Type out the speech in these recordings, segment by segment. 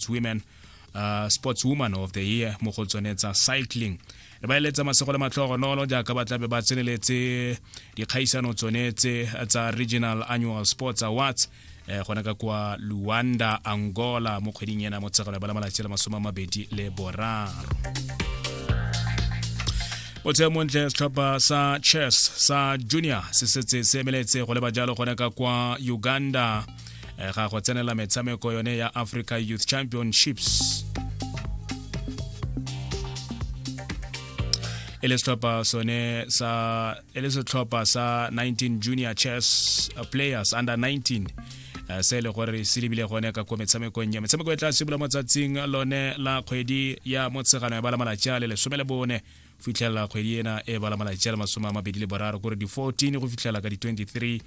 sports women uh, sports woman of the year mo go tsone tsa cycling re ba eletsa masego le matlhogonolo jaaka ba tlabe ba tseneletse dikgaisano tsone tse tsa regional annual sports awards eh, gona ka kwa luanda angola mo kgweding ena motshegelo ba la malatsi le masome a mabedi le boraro botshego montle setlhopha sa chess sa junior se setse se emeletse go leba jalo gone ka kwa uganda eh, ga go tsenela metshameko yone ya africa youth championships e le setlhopha sone sa e le setlhopha sa 19 junior chess uh, players under 19 uh, se e le gore se lebile gone ka ko metshamekong ya metshameko e tla simolola mo tsatsing lone la kgwedi ya motshegano ya bala malatsi a le lesome le bone fitlhelela kgwedi ena e bala malatsi a le masome a mabedi le boraro kore di-14 go fitlhela ka di-23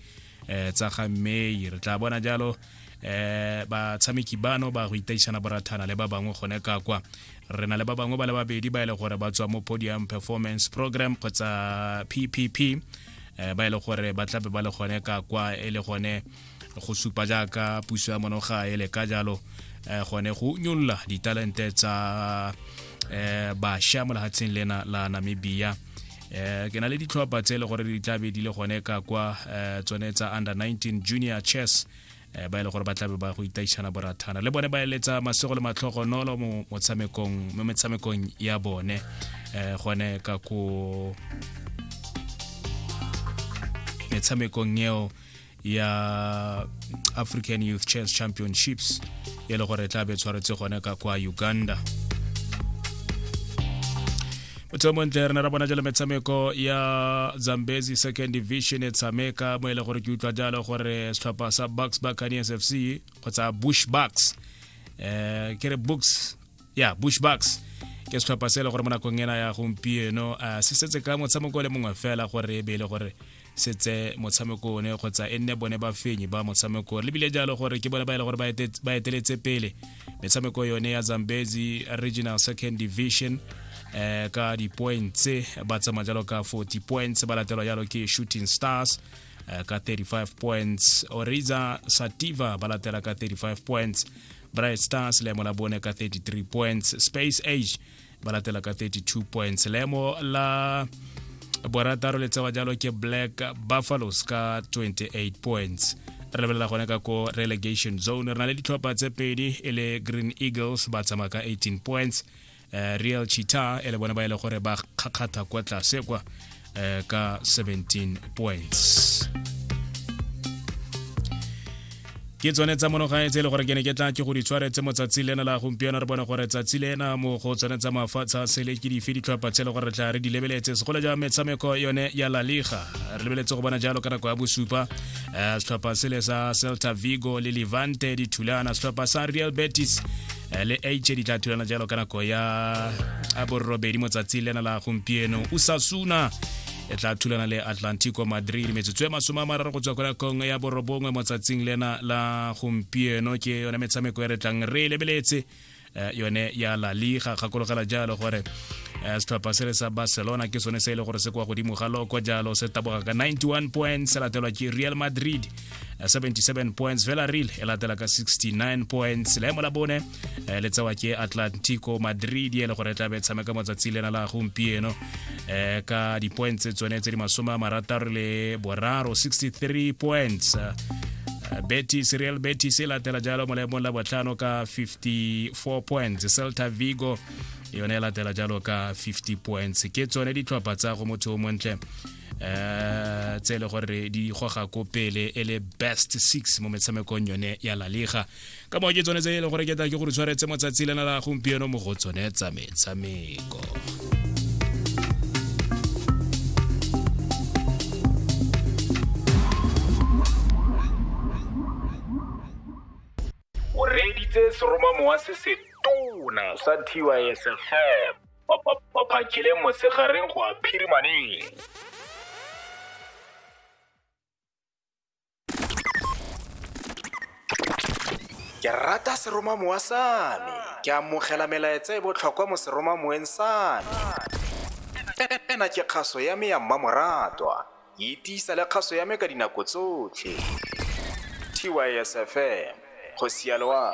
eh, tsa ga may re tla bona jalo eh batshameki bano ba go itaišana borathana le ba bangwe gone ka kwa re na le ba bangwe ba le babedi ba e le gore ba tswa mo podium performance program kgotsa ppp eh, ba e le gore ba tlabe ba le gone ka kwa e le gone go supa jaaka puso ya monoga e leka jalo eh, gone go nyolola ditalente tsa eh, basha mo lehatsheng lena la namibia eh, ke na le ditlhopha tse e le gore di tla be di le gone ka kwa eh, tsone tsa under 19 junior chess eh, ba e le gore ba tlabe ba go itaišana borathana le bone ba eletsa masego le matlhogonolo mo motshamekong mo metshamekong ya bone eh, gone ka ko metshamekong eo ya african youth chess championships e le gore e tla be tshwaretse gone ka kwa uganda motho montle re ne ra bona jalo metshameko ya zambezi second division e tshameka mo e le gore ke utlwa jalo gore setlhopha sa bucks buccaneers f c kgotsa bush bucks um eh, ke re books ya bush bucks ke setlhopha se e le gore mo nakong ena ya gompieno a se setse ka motshameko le mongwe fela gore e be e le gore se tse motshameko one kgotsa e nne bone ba fenyi ba motshameko le bile jalo gore ke bone ba e le gore ba eteletse pele metshameko yone ya zambezi regional second division eh ka di-points ba tsamaya jalo ka 40 points ba latelwa jalo ke shooting stars eh, ka 35 points oriza sativa ba latela ka 35 points bright stars leemo la bone ka 33 points space age ba latela ka 32 points leemo la borataro le tsewa jalo ke black buffaloes ka 28 points re lebelela gone ka ko relegation zone re na le ditlhopha tse pedi e le green eagles ba tsamaya ka 18 points uh, real chita e le bone ba e le gore ba kgakgatha kwa tlase kwa uh, ka 17 points ke tsone tsa monogane tse e le gore ke ne ke tla ke go di tshwaretse mo tsatsi lena la gompieno re bone gore tsatsi lena mo go tsone tsa mafatshe a sele ke dife ditlhopha tse e le gore re tla re di lebeletse segolo ja metshameko yone ya la liga re lebeletse go bona jalo ka nako ya bosupa eh, setlhopha sele sa celta vigo le levante dithulana setlhopha sa real betis eh, le h di tla thulana jalo ka nako ya borobedi motsatsi lena la gompieno usasuna e tla thulana le atlantico madrid metsotso e masome a mararo go tswa kwa nakong ya borobongwe motsatsing lena la gompieno ke yone metshameko e re tlang re e lebeletse eh, yone ya la liga gakologela jalo gore eh, setlhopha se re sa barcelona ke sone se e le gore se kwa godimo ga loko jalo se taboga ka 91 point se latelwa ke real madrid eh, 77 points villarreal e latela ka 69 points leemo la bone eh, le tsewa ke atlantico madrid e le gore e tlabe e tshameka motsatsi lena la gompieno eh, ka di-points tse tsone tse di masome a marataro le boraro 63 points eh, betis real betis e latela jalo mo leemong la botlhano ka 54 points celta vigo yone e latela jalo ka 50 points ke tsone ditlhopha tsa go motho o montle eh tse le gore di goga ko pele e le best six mo metshamekong yone ya la liga ka moo ke tsone tse e leng gore ke tla ke gore tshwaretse motsatsi lena la gompieno mo go tsone tsa metshameko o reditse seromamowa se se tona sa tysfm phakeleng mosegareng go a phirimaneng ke rata seromamowa sa me ke amogela melaetsa e botlhokwa mo seromamoweng sa me ena ke kgaso ya me ya mmamoratwa e tiisa le kgaso ya me ka dinako tsotlhe tysfm go sialoa